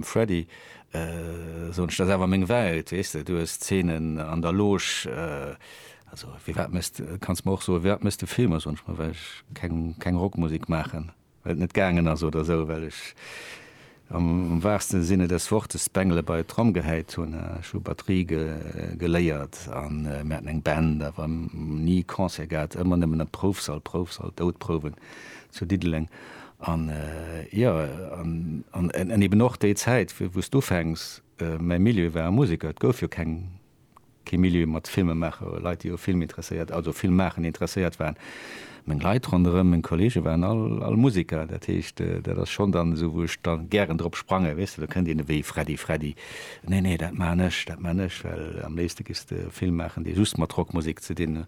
Freddy, soen ech, dat ass awer meng Welt, weess de, du hues Szenen an der Loge, also firwat méchs de, kanns mer och soen, firwat méchs de Filmer, soen ech, ma well ech keng, keng Rockmusek maachen, well et net gaangen ass oder esou, well ech am waachsten Sinne des Wortes d'Bengele bei d'Tromm gehäit hunn, ech hu Batterie geléiert a mir haten eng Band, awer ni Concert gehat, ëmmer nëmmen am Proufsall, Proufsall, Doudprouwen zu Diddeleng. An, jo, an eben och déi Zäit, wou s du ufänks, mäi Milieu war e Museker, et gouf jo keng, kee Milieu mat Filmemaacher oder Leit, déi u Film interesséiert, also Filmmaachen interesséiert waren. Meng Leit ronderëm, meng Kolleege waren all, all Museker. Dat heescht, dat ass schonn dann esou, wou ech da gären drop sprangen, weess de. Da kënnt een ewéi Freddy Freddy, Nee, nee, dat maachen ech, dat maachen ech. Well am léifste giffs de e Film maachen, dee just mat Rockmusek ze dinn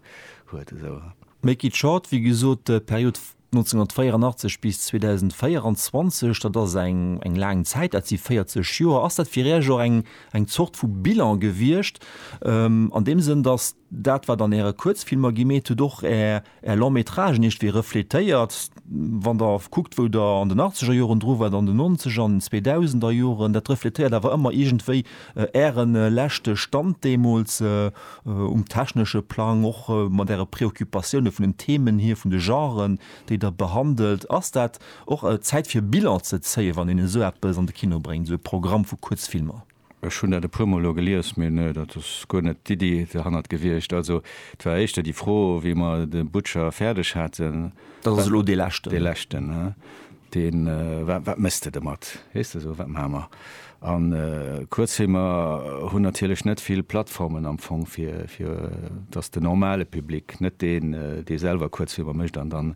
huet esou. Make it short, wéi gesot, d'Period 1984 bis 2024, dat ass eng eng laang Zäit, dat si 40 Joer. Ass dat fir Iech och eng eng Zort vu Bilan gewiescht, an deem Sënn, datt dat, wat an Äre Kuerzfilmer gemeet hutt, och Är Är Long-métragen iergendwéi refletéiert, wann Der kuckt, wou Der an den Achtzegerjoren dru waart, an den Nonzeger an den Zweedausender Joren, dat refletéiert awer ëmmer iergendwéi Ären leschte Stand deemools um technesche Plang, och mat Äre Preoccupatiounen vun den Themen hier, vun de Genren, déi Der behandelt. Ass dat och Zäit fir Bilan ze zéien, wann een esou eppes an de Kino bréngt, esou e Programm vu Kuerzfilmer? Ech hunn dat e puermol elo gelies, mee nee, dat ass guer net d'Iddi derhannert gewiescht. Also et war éischter déi Fro, wéi mer de Butcher fäerdeg haten, Dat ass elo dee leschten. Dee leschten, dee wat méchs de domat, weess de, esou wat maache mer? A Kuerzfilmer hunn natierlech net vill Plattformen am Fong, fir fir dass de normale Public, net deen, dee selwer Kuerzfilmer mécht an dann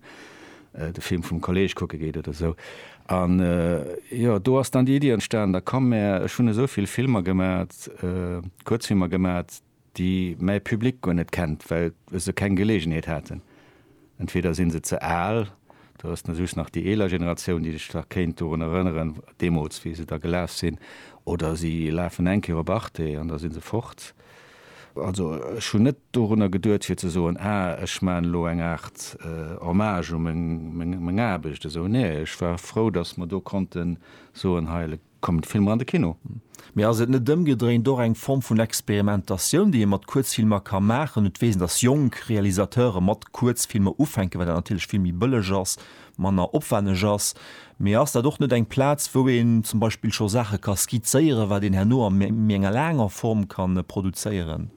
de Film vum Kolleeg kucke geet oder esou. An jo, do ass dann déi Iddi entstanen, da komm mär, ech hunn esou vill Filmer gemat, Kuerzfilmer gemat, déi mäi Public guer net kennt, well se keng Geleegenheet haten, entweder si se ze al, do ass dann just nach déi eeler Generatioun, déi sech nach kéint dorun erënneren, deemools, wéi se da gelaf sinn, oder si lafen eng Kéier op Arte an da si se fort. Also ech hunn net dorunner geduet, fir ze soen, Ah, ech maachen elo eng Aart Hommage u meng Aarbecht, esou, nee, ech war frou, datt mer do konnte soen, hei, Kommen d'Filmer an de Kino? Mee ass et net ëmgedréint och eng Form vun Experimentatioun, déi ee mat Kuerzfilmer ka maachen? Et weess een, dass jonk Realisateure mat Kuerzfilmer ufänken, well dat natierlech vill méi bëlleg ass, manner opwenneg ass. Mee ass dat och net eng Plaz, wou een zum Beispill scho Saache ka skizzéieren, wat een herno a méi enger laanger Form ka produzéieren?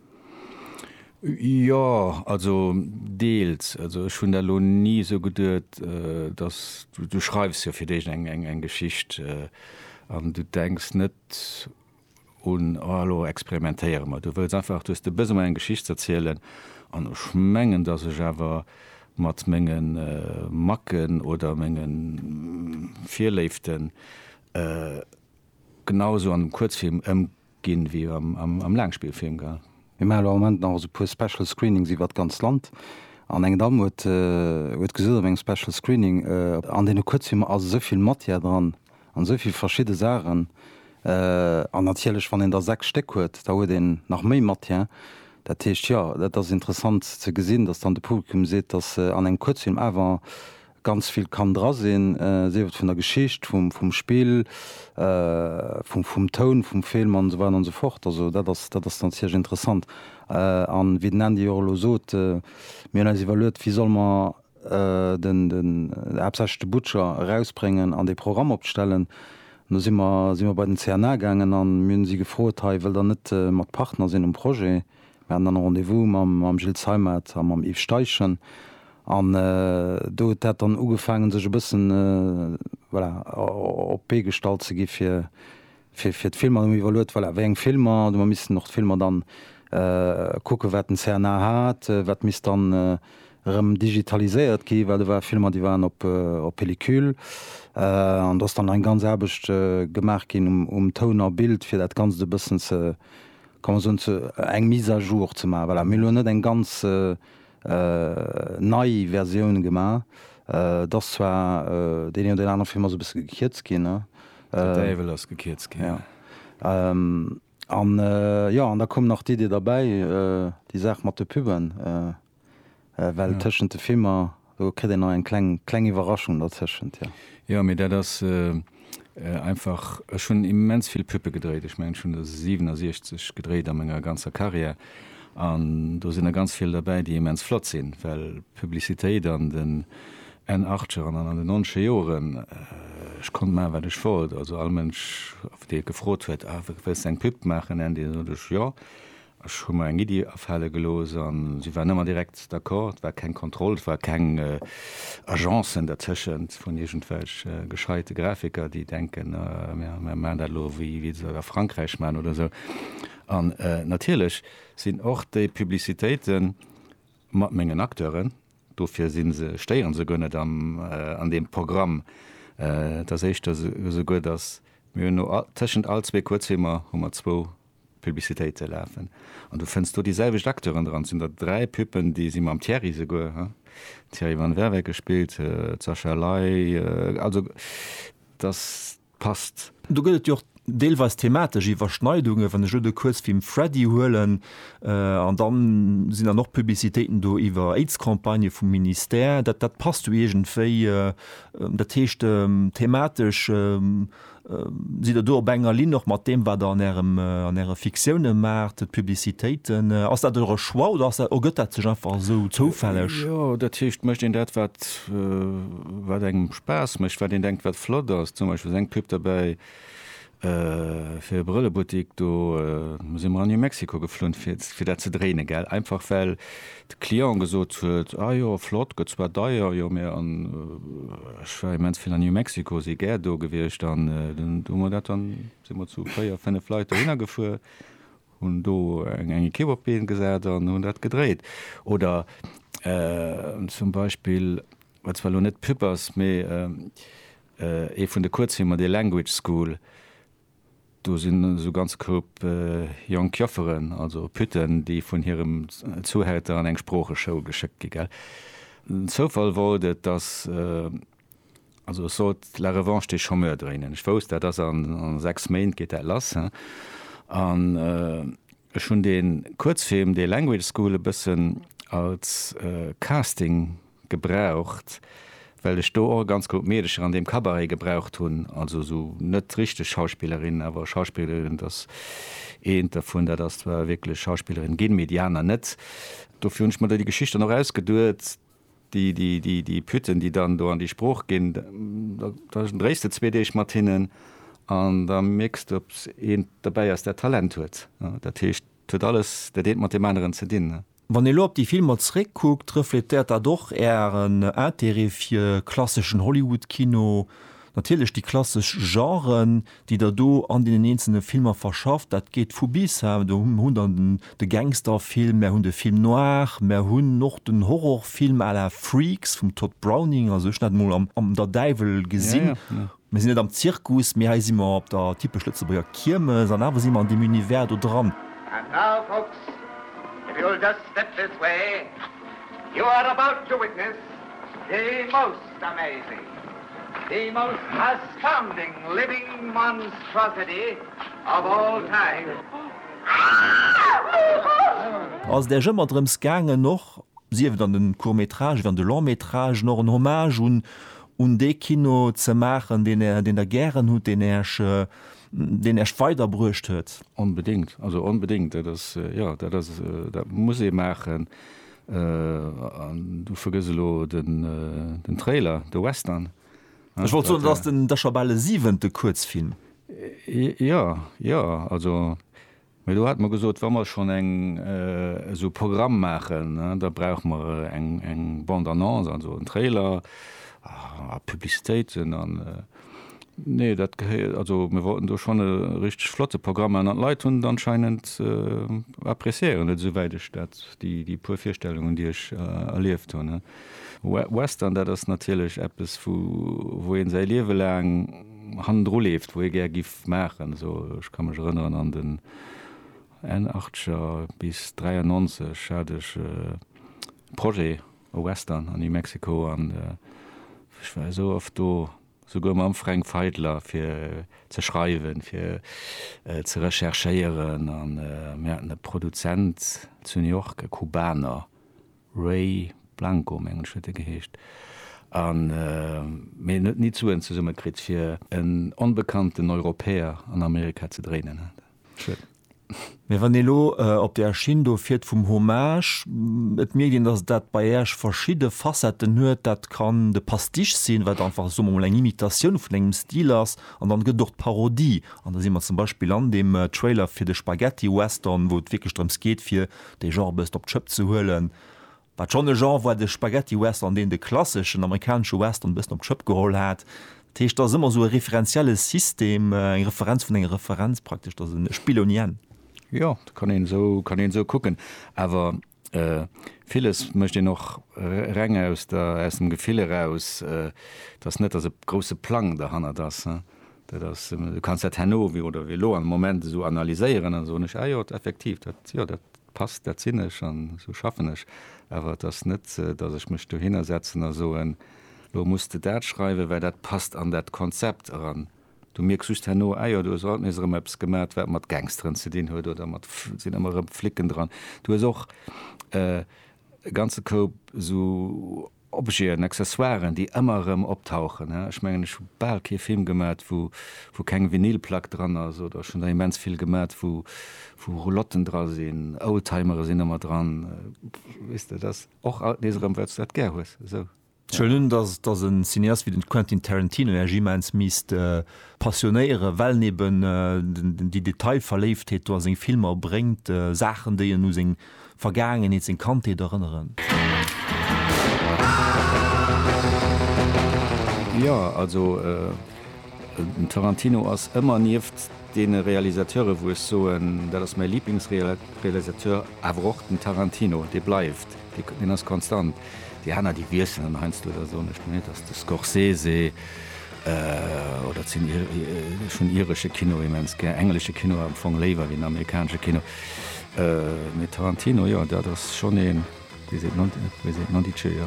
Jo, also deels. Also ech hunn dat elo ni esou geduet, dass, du, du schreifs jo fir d'éischt eng, eng, eng Geschicht an du denks net un, oh elo experimentéiere mer. Du wëlls einfach, du hues de Besoin eng Geschicht z'erzielen an ech mengen, dass ech awer mat menge Macken oder menge Virléiften genau esou an dem Kuerzfilm ëm, ginn wéi am Laangspillfilm, gell? Mir maachen elo am Moment nach esou e puer Special Screenings iwwert d'ganz Land an eng Damm huet gesot op engem Special Screening, an deene Kuerzfilmer ass esou vill Matière dran an esou vill verschidde Saachen an natierlech wann een der 6 Stéck huet, da huet een nach méi Matière. Dat heescht, jo, dat ass interessant ze gesinn, datt dann de Publikum seet, datt an engem Kuerzfilm awer Ganz vill kann dra sinn, sief et vun der Geschicht, vum Spill, vum Toun vum Film an esou weider an esou fort. Also dat ass dat ass dann ziemlech interessant. An wéi den Andy och elo sot, mir hunn eis iwwerluet, wéi solle mer den den haaptsächlech de Butcher erausbréngen an dee Programm opstellen. An do si mer si mer bei den CNA gaangen an mir hunn si gefrot, hei wëllt der net mat Partner sinn um Projet? Mir haten dann e Rendez-vous mam Gilles Zeimet a mam Yves Steichen. An do huet dat dann ugefaangen, sech e bëssen, voilà, op d'Bee gestallt ze gi fir, fir d'Filmer. Hu mir iwwerluet, voilà, wéi eng Filmer, do mer missten och d'Filmer dann kucken, wat den CNA hat, wat misst dann erëm digitaliséiert gi, well do ware Filmer, déi waren op Pellicule. An do ass dann eng ganz Aarbecht gemaach ginn um Toun a Bild, fir dat Ganzt e bëssen ze, kann mer soen, ze eng Mise à jour ze maachen. Voilà, mir hu lo net eng ganz nei Versioun gemaach. Et ass zwar deen een oder deen anere Film ass e bësse gekierzt ginn, ne? De Däiwel ass gekierzt ginn. Ja. An, jo, an da koum nach d'Idee derbäi, déi Saach mat de Puben. Well tëschent de Filmer, do kritt een nach eng kleng, kleng Iwwerraschung dotëschent, jo. Jo, mee dat ass einfach, ech hunn immens vill Puppe gedréit. Ech mengen, ech hunn der 67 gedréit a menger ganzer Karriär. An do sinn der ganz vill derbäi, déi immens flott sinn. Well Publicitéit an den Enn-Achtzeger an an den Nonzeger Joren, ech konnt maachen, wat ech wollt. Also all Mënsch, dee gefrot huet, A wëlls de eng Pupp maachen, Andy? Da sot ech, Jo. Ech hu mer eng Iddi afale gelooss an si waren ëmmer direkt d'accord. Et war keng Kontroll, et war keng Agencen dertëschent vun iergendwelch gescheite Grafiker, déi denken, mir maachen dat elo wéi se dat a Frankräich maachen oder esou. An natierlech sinn och déi Publicitéite mat mengen Acteuren, dofir si se, stéiere se guer net an deem Programm. Et ass éischter esouguer, datt mir hunn no, tëschent all zwee Kuerzfilmer hu mer zwou Publicitéite lafen an du fënns do déi selwecht Acteuren dran. Et sinn der dräi Puppen, déi si mam Thierry souguer, den Thierry van Werweke spillt d'Sascha Ley, also dass passt. Do gëtt et jo och deelweis thematesch Iwwerschneidungen, wann ech elo de Kuerzfilm Freddy huelen an da sinn dann och Publicitéiten do iwwer Aids-Campagnë vum Ministère. Dat passt jo iergendwéi. Dat heescht thematesch. Sidd Der do op enger Linn och mat deem, wat Der an Ärem, an Äre Fiktioune maacht, d'Publicitéiten? Ass dat Eure Choix oder ass dat, ergëtt dat sech einfach esou zoufälleg? Jo, dat heescht, mécht een dat, wat, wat engem Spaass mécht, wat een denkt, wat flott ass. Zum Beispill ass eng Pub derbäi fir e Brëllebuttik, do si mer an New Mexico geflunn, fir, fir dat ze dréinen, gell, einfach well, de Client gesot huet, ah jo flott, gëtt zwar deier, jo mee an ech war immens vill an New Mexico, si gär do gewiescht an dunn hu mer dat dann, si mer zu véier, fënnef Leit dohinner gefuer, hunn do eng eng Ekipp op d'Been gesat an hunn dat gedréit. Oder zum Beispill, wat zwar elo net Pub ass, mee ee vun de Kuerzfilmer, dee Language School, Do sinn esou ganz Koup jonk Jofferen, also Pütten, déi vun hirem Zuhälter an eng Sproocheschoul geschéckt gi gell. Den Zoufall wollt et, dass, also ech sollt La Revanche des Chômeurs dréinen. Ech wousst, dat ass a 6 Méint geet dat lass, hein. An ech hunn dee Kuerzfilm, dee Language School e bëssen als Casting gebraucht, well ech do och e ganz groudd Meedercher an deem Cabaret gebraucht hunn, also esou net richteg Schauspillerinnen, awer Schauspillerinnen, dass eent dervun, dat ass zwar wierklech Schauspillerin ginn, mee déi aner net. Dofir hunn ech mer do déi Geschicht dann och ausgeduet, déi, déi, déi, déi Pütten, déi dann do an déi Sprooch ginn, da, da dréis de zwee Deeg mat hinnen an da mierks de, ob eent dobäi ass, dat Talent huet. Dat heescht, et huet alles dat eent mat deem aneren ze dinn. Wann ee lo op déi Filmer zréckkuckt, refletéiert dat och Ären Intérêt fir klasseschen Hollywood-Kino, natierlech déi klassesch Genren, déi Der do an deenen eenzelne Filmer verschafft. Dat geet vu bis. Do hunn Der de Gangsterfilm, mär hunn de Film noir, mär hunn och den Horrorfilm à la Freaks vum Tod Browning, also ech hunn dat emol am Der Däiwel gesinn. Mir sinn net am Zirkus, mee hei si mer op der typesch Lëtzebuerger Kiermes an awer si mer an deem Univers do dran. And now folks, if you'll just step this way, you are about to witness the most amazing, the most astounding living monstrosity of all time. Ass et Äech ëmmer drëms gaangen, och sief et an de Court-métrage wéi an de Long-métrage, och en Hommage un un dee Kino ze maachen, deen Är, deen Der gären hutt, deen Äerch, deen Äerch weider bruecht huet? Onbedéngt, also onbedéngt. Dat ass, jo, dat ass, dat muss ee maachen. An du vergëss elo den, den Trailer, de Western. Ech wollt soen, dat ass den, dat ass scho bal e siwente Kuerzfilm. Jo, jo, also Mee do hate mer gesot, wa mer schonn eng esou Programm maachen, da brauche mer eng Bande-annonce, also en Trailer a Publicitéiten an nee, dat gehéiert, also mir wollten do schonn e richteg flotte Programm maachen an d'Leit hunn et anscheinend, appreciéieren et, esouwäit ech dat, déi puer Virstellungen, déi ech erlieft hunn. Western, dat ass natierlech eppes, wou ee säi Liewe laang. hannendru leeft, wou hie gär giff maachen. Also ech ka mech erënneren an den Enn Achtzeger bis 93 hat ech e Projet, e Western an New Mexico an ech war esou oft do, souguer mam Fränk Feidler fir ze schreiwen, fir ze recherchéieren an mir haten e Produzent zu New York, e Kubaner, Ray Blanco mengen ech huet e geheescht, a mee en huet ni d'Suen zesumme kritt fir en onbekannten Europäer an Amerika ze dréinen. Schued. Mee wann ee lo op där Schinn do fiert vum Hommage, et mierkt een datt dat bei Äech verschidde Facetten huet, dat kann de Pastiche sinn, wat einfach, soe mer emol, eng Imitatioun vun engem Stil ass, an dann gëtt et och d'Parodie, an da si mer zum Beispill an deem Trailer fir de Spaghetti-Western, wou et wierklech drëms geet fir dee Genre e bësst op d'Schëpp ze huelen, wat schonn e Genre war, de Spaghetti-Western, deen de klasseschen amerikanesche Western e bëssen op d'Schëpp geholl hat. Dat heescht, dat ass ëmmer esou e referenzielle System, eng Referenz vun enger Referenz praktesch, dat ass en Spill ouni Enn. Jo, dat kann een esou, kann een esou kucken. Awer villes mécht een och reng aus der, aus dem Gefill eraus. Et ass net, datt e grousse Plang derhannert ass. Dat ass, du kanns dat herno oder wéi elo am Moment esou analyséieren an soen, ech, ah jo, effektiv, dat, jo, dat passt, dat sinn ech an esou schaffen ech. Awer et ass net, datt ech mech dohinner setzen a soen, elo muss de dat schreiwen, well dat passt an dat Konzept eran. Du mierks just herno, ah jo, du hues haut nees erëm eppes gemat, wat mat Gangsteren ze dinn huet oder mat, sinn ëmmer erëm Flicken dran. Du hues och e ganze Koup esou Objeten, Accessoiren, déi ëmmer erëm optauchen. Ech mengen, ech hu bal kee Film gemat, wou, wou keng Vinylplack dran ass, oder ech hunn der immens vill gemat, wou, wou Roulotten dra sinn, Oldtimere sinn ëmmer dran. Weess de, et ass och alt nees erëm, wat s du dat gär hues. Esou. Schönen, dass, dass e Cineast wéi den Quentin Tarantino Iech immens misst passionéieren, well en eben déi Detailverléiftheet do a seng Filmer bréngt, Saachen, déi en u seng, Vergaangenheet seng Kandheet erënneren. Jo, also den Tarantino ass ëmmer nieft deene Realisateure wou ech soen, dat ass mäi Liblingsrealisateur, awer och den Tarantino, dee bleift, deen ass konstant. Déi aner déi wiesselen heiansdo, da soen ech net, dass de Scorsese, Oder sinn schonn iresche Kino immens gär. Englesche Kino am Fong léiwer wéi den amerikanesche Kino. Mee Tarantino, jo, dat ass schonn een, wéi seet, wéi seet, Nondice, jo.